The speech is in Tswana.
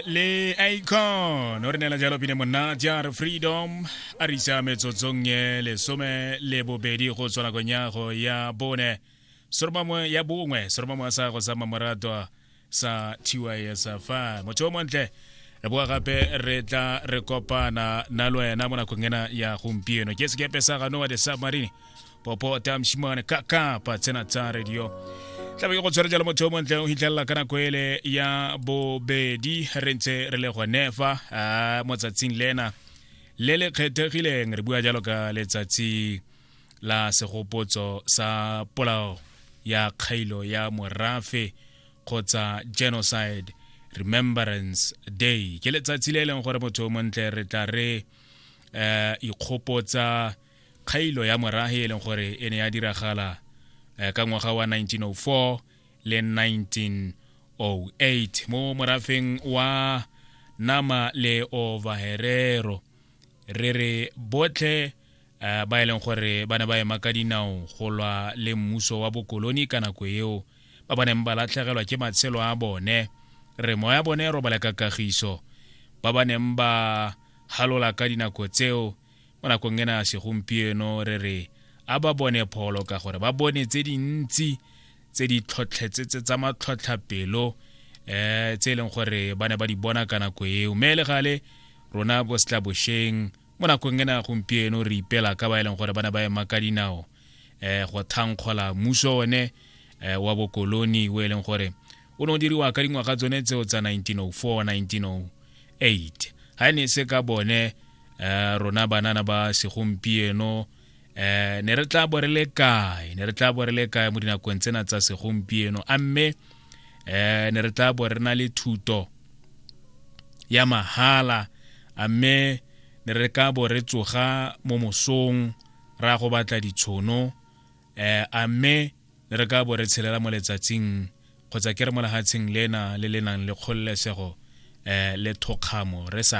le icon o re neela jalo pine monna jar freedom a re isa metsotsong e lesome le bobedi go tswa nakong ya go ya bone soromamwe ya bongwe soromamwe a sa go sa mamoratwa sa tisa fa motho o montle re boa gape re tla re kopana na le wena mo nakong ena ya gompieno ke sekepe sa ganoa de submarine popo tamshimane kaka pa tsena tsa radio tlabe ke go tshwere jalo motho o montle o hitlhelela ka nako ele ya bobedi re ntse re le gone fa ah, mo tsatsing lena le le kgethegileng re bua jalo ka letsatsi la segopotso sa polao ya kgailo ya morafe kgotsa genocide remembrance day ke letsatsi le e leng gore motho o montle re tla re um ikgopotsa Kgailo ya morahe e leng gore e ne ya diragala eh, ka ngwaga wa 1904 le 1908 mo morafeng wa nama le ovaherero re re botlhe eh, ba e leng gore ba ne ba ema ka dinao go lwa le mmuso wa bokoloni ka nako eo ba ba neng ba latlhegelwa ke matshelo a bone re moya bone robale ka kagiso ba ba neng ba halola ka dinako tseo mo nakong ena ya segompieno re re a ba bone pholo ka gore ba bone tse dintsi tse di tlhotlhetsetse tsa matlhotlhapelo um tse e leng gore ba ne ba di bona ka nako eo mme le gale rona bo setla bosheng mo nakong e na gompieno re ipela ka ba e leng gore ba ne ba ema ka dinao um go thankgola mmuso one um wa bokoloni o e leng gore o ne o diriwa ka dingwaga tsone tseo tsa 1904 1908 ga e ne e se ka bone um rona banana ba segompieno um ne re tla bo re le kae ne re tla bo re le kae mo dinakong tsena tsa segompieno a mme um ne re tla bo re na le thuto ya mahala a mme ne re ka bo re tsoga mo mosong ra go batla ditshono um a mme Re ka bo re tshelela mo letsatsing kgotsa ke re mo lehatsheng lena le le nang le kgololesego le thokgamo re sa